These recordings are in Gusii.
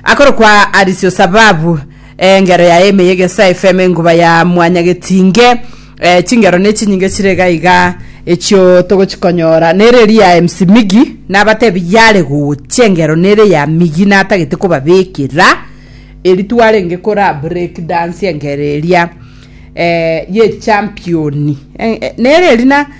akorokwa arisio sababu eh, engero yaye emeye gesa efeme enguba ya mwanya getinge eh, chingero ne chinyinge chire gaiga echio togochikonyora nere eri ya MC Migi nabatebi yare gochia engero nere ya Migi natagete kobabekera eri twarenge kora break dance engero eria eh, ye championi eh, eh, nere eri na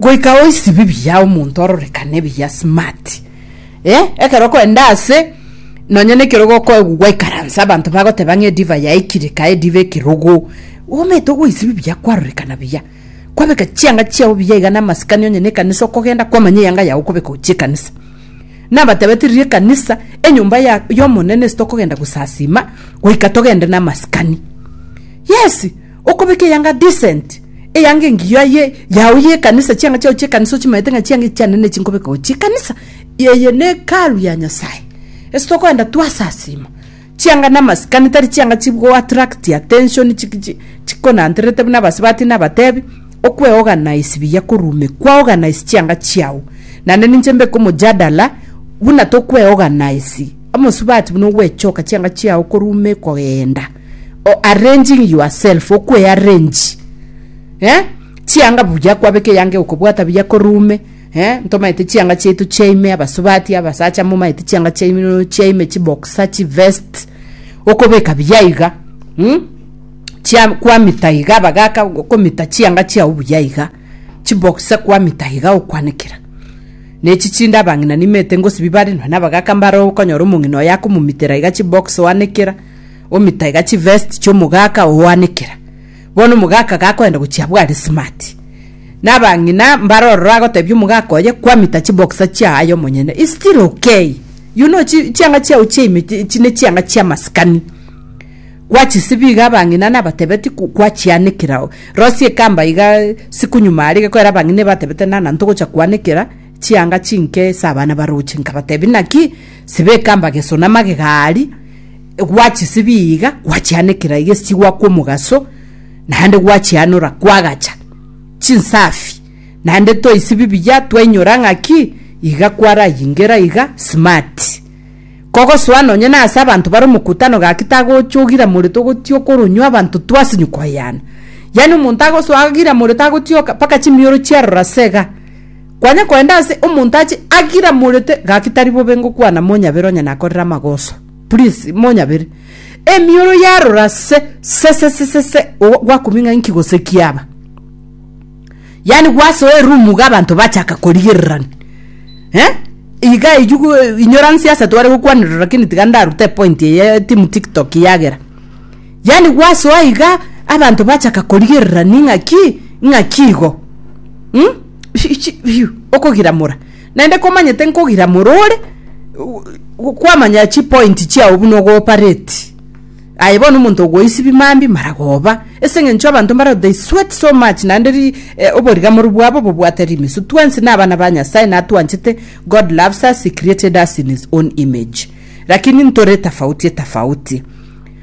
Goika oisibi buya omonto ororekane buya smart eh ekero okoenda ase nonya ne ekerogo okoegwa gwaikaransa abanto bagoteba ng'a ediva yaikire kae ediva ekerogo omanyete ogoisibi buya kwarorekana buya kwabeka chianga chiao buya iga na amasikani onye ne ekanisa okogenda kwamanya eyanga yago okobeka gochia ekanisa nabatebete riria ekanisa enyomba ya y'omonene ase tokogenda gosasima goika togende na amasikani yes. Okobeka eyanga decent, eyanga engiya ye yao ye ekanisa, chianga chiao chie ekanisa ochimaete ng'a chianga echi chiane ne chinkobeka gochia ekanisa. Eye ne Hekalu ya Nyasaye. Ase tokoenda twasasima, chianga na amasikani tari chianga chigo attract attention chi chi chikonantererete buna abasibati na abatebi. Okwe organize buya korume kwa organize chianga chiao. Naende ninche mbeke omojadala buna tokwe organize omosubati buna ogwechoka chianga chiao korume kogenda. or arranging yourself okwe arrange eh chianga buya kwabeka eyanga eye okobwata buya ko room eh ntomaete chianga chiaito chiaime abasubati abasacha momaete chianga chiaino chiaime chiboxer chivest okobeka buya iga mm? chia kwamita iga abagaka okomita chianga chiao buya iga chiboxer kwamita iga okwanekera nechi chinde abang'ina nimete ngosibibare nonya na abagaka mbare okonyora omong'ina oyo akomomitera iga chiboxer oanekera omitaga chivest chiomogaka oanekera bono omogaka gakoenda gochia abware smart nabang'ina mbare ororo agotebia omogaka oye kwamita chiboxer chiaye omonyene is still okay you know chi- chianga chiao chiaime chi- chi- ne chianga chia maskani gwachisibi iga abang'ina nabatebeti ku- kwachianekera rosie kamba iga siku nyuma arige kwera abang'ina batebete nana ntogocha kwanekera Chianga chinke ase abana ba Rochi nkabatebia, Naki sibeka amageso na amagegari, gwachisibia iga, gwachianekera egesigwa kw'omogaso, naende gwachianora kwagacha chinsafi, naende toisibia buya twainyora ng'aki iga kwarayingera iga smart. Kogosoa nonye nase abanto bare omokutano gaki tagocha ogira more togotia okoronywa abanto twasinywa koyana. Yaani omonto agosoa agira more tagotioka mpaka chimioro chiarora iga. Kwanya koenda ase omonto ache agira morete gaki tari bobe ngokwana monyabere onye nakorire amagoso. Please monyabere. Emioro yarora se se se se se se o- gwakumia ng'a inki gose kiaba. Yaani gwasoa eroom iga abanto bachaka korigererani. Eh? Iga ejugu inyoransi ase tware gokwanerera lakini tiga ndarute epoint eye timu TikTok yagera. Yaani gwasoa iga abanto bachaka korigerera ning'aki ng'aki igo mm? okogiramora naende komanyete nkogiramora ore kwamanya chipoint chiao buna ogopareti aye bono omonto ogoisibi mambi maragoba ase eng'encho abanto mbaro they sweat so much naende ri eh, oborigamoru bwabo bobwate rimisu twensi na abana ba nyasaye natwanchete god loves us he created us in his own image lakini ntore tofauti tofauti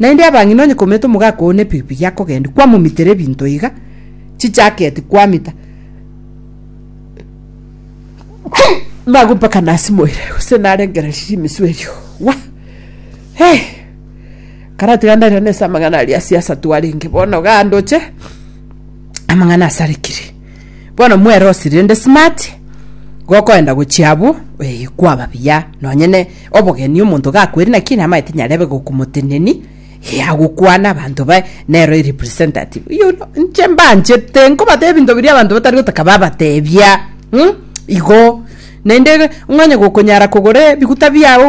Naende abang'ina onye koumete omogaka oo nepikipiki akogendia kwamomitera ebinto iga chichaketi kwamita mago mpaka nasimoire gose narengerereria rimesu erio wa hey! karatiga ndaira nese amang'ana aria ase ase twarenge bono iga ndoche amang'ana asarekire bono mwere osiri rende smart gokoenda gochia abwo eh kwaba buya nonye ne. Obogeni omonto gakweri naki namanye tinyarebe gokomoteneni eh, agokwana abanto baye nero erepresentative you know, nche mbanchete nkobatebia ebinto biria abanto batari gotaka babatebia hmm? igo naende ng'onye gokonyara kogora ebiguta biago